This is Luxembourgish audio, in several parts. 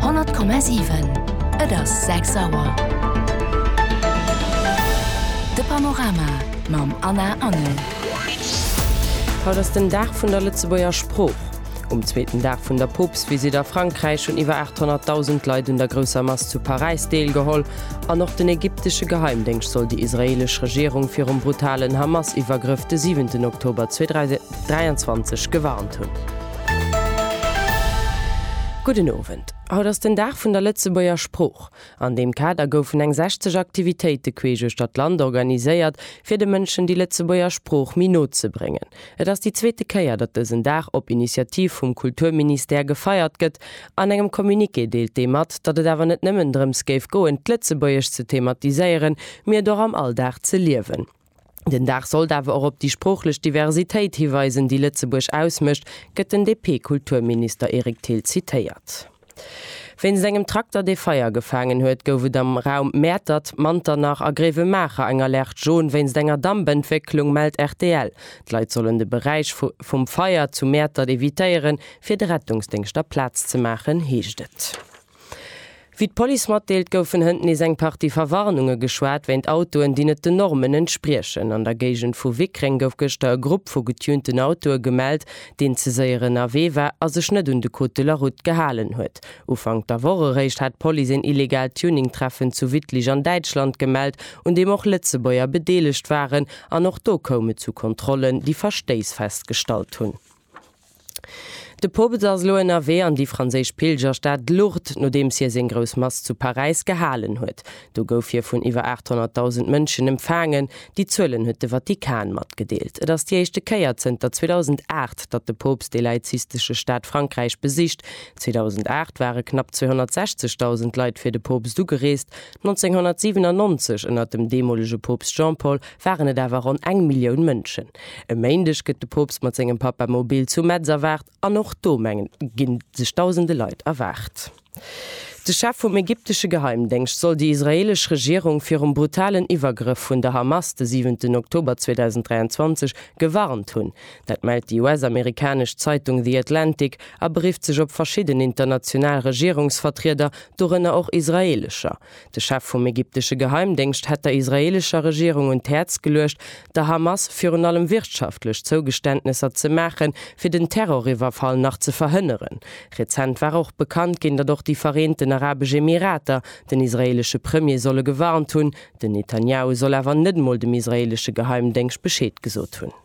100,7 Et ass 6 Auer. De Panorama mam Anna Engel. Haut ass den Dag vun der Lëtzebuerger Sprooch. Um zweeten Dag vun der Poopstvisitt a Frankräich hunn iwwer 800.000 Leit un der grousser Mass zu Paräis deelgeholl an och den ägyptesche Geheimdéngscht soll déi israeelesch Regierung virum brutalen Hamas-Iwwergrëff de siwenten Oktober 23 gewarnt hunn. Gudden Owend. Haut ass den Dag vun der Lëtzebuerger Sprooch. An deem Kader goufen eng 60 Aktivitéite queesch uechter d'Land organiséiert, fir de Mënschen déi Lëtzebuerger Sprooch méi no ze bréngen. Et ass déi zweete Kéier, datt dësen Dag op Initiativ vum Kulturministère gefeiert gëtt. An engem Communiqué deelt dee mat, datt et awer net nëmmen drëms géif goen, d'Lëtzebuergesch ze thematiséieren, mee et och am Alldag ze liewen. Den Dag sollt awer och op déi sproochlech Diversitéit hiweisen, déi Lëtzebuerg ausmécht, gëtt den DP-Kulturminister Eric Thill zitéiert. Wéinst engem Trakter, dee Feier gefaangen huet, gouf et am Raum Mäertert, Manternach a Gréiwemaacher eng Alerte jaune wéinst enger Dampentwécklung, mellt rtl. D'Leit sollen de Beräich vum Feier zu Mäertert evitéieren, fir de Rettungsdéngschter Plaz ze maachen, heescht et. Wéi d'Police matdeelt, goufen hënt nees eng Partie Verwarnunge geschwat wéint Autoen, déi net den Normen entspriechen. An der Géigend vu Wickreng gouf gëschter e Grupp vu getunten Autoe gemellt, deen ze séier ënnerwee war a sech net un de Code de la Route gehalen huet. Ufank der Woch eréischt hat d'Police een illegaalt Tuning-Treffen zu Wittlich an Däitschland gemellt, un deem och Lëtzebuerger bedeelegt waren. An och do koum et zu Kontrollen, déi Verstéiss festgestallt hunn. De Poopst ass elo ënnerwee an déi franséisch Pilgerstad Lourdes, nodeems hie seng grouss Mass zu Paräis gehalen huet. Do gouf hie vun iwwer 800.000 Mënschen empfaangen. Déi Zuelen huet de Vatikan matgedeelt. Et ass déi éischte Kéier zënter 2008, datt de Poopst dee laizistesche Staat Frankräich besicht. 2008 ware knapp 260.000 Leit fir de Poopst ugereest. 1997, ënner dem deemolege Poopst Jean-Paul, waren et awer ronn eng Millioun Mënschen. E Méindeg gëtt de Poopst mat sengem Papamobil zu Metz erwaart an och do, mengen ginn sech dausende Leit erwaart. De Chef vum ägyptesche Geheimdéngscht soll déi israeelesch Regierung virum brutalen Iwwergrëff vun der Hamas de siwenten Oktober 2023 gewarnt hunn. Dat mellt déi US-amerikanesch Zeitung The Atlantic a berifft sech op verschidden international Regierungsvertrieder, dorënner och israeelescher. De Chef vum ägyptesche Geheimdéngscht hätt der israeelescher Regierung un d'Häerz geluecht, der Hamas virun allem wirtschaftlech Zougeständnesser ze maachen, fir den Terroriwwerfall nach ze verhënneren. Rezent war och bekannt ginn, datt och déi Vereenten Arabesch Emirater den israeelesche Premier solle gewarnt hunn. Den Netanjahu soll awer net emol dem israeelesche Geheimdéngscht Bescheed gesot hunn.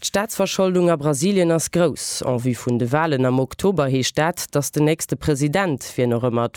D'Staatsverscholdung a Brasilien ass grouss. En vue vun de Walen am Oktober heescht dat, datt den nächste President, wien och ëmmer et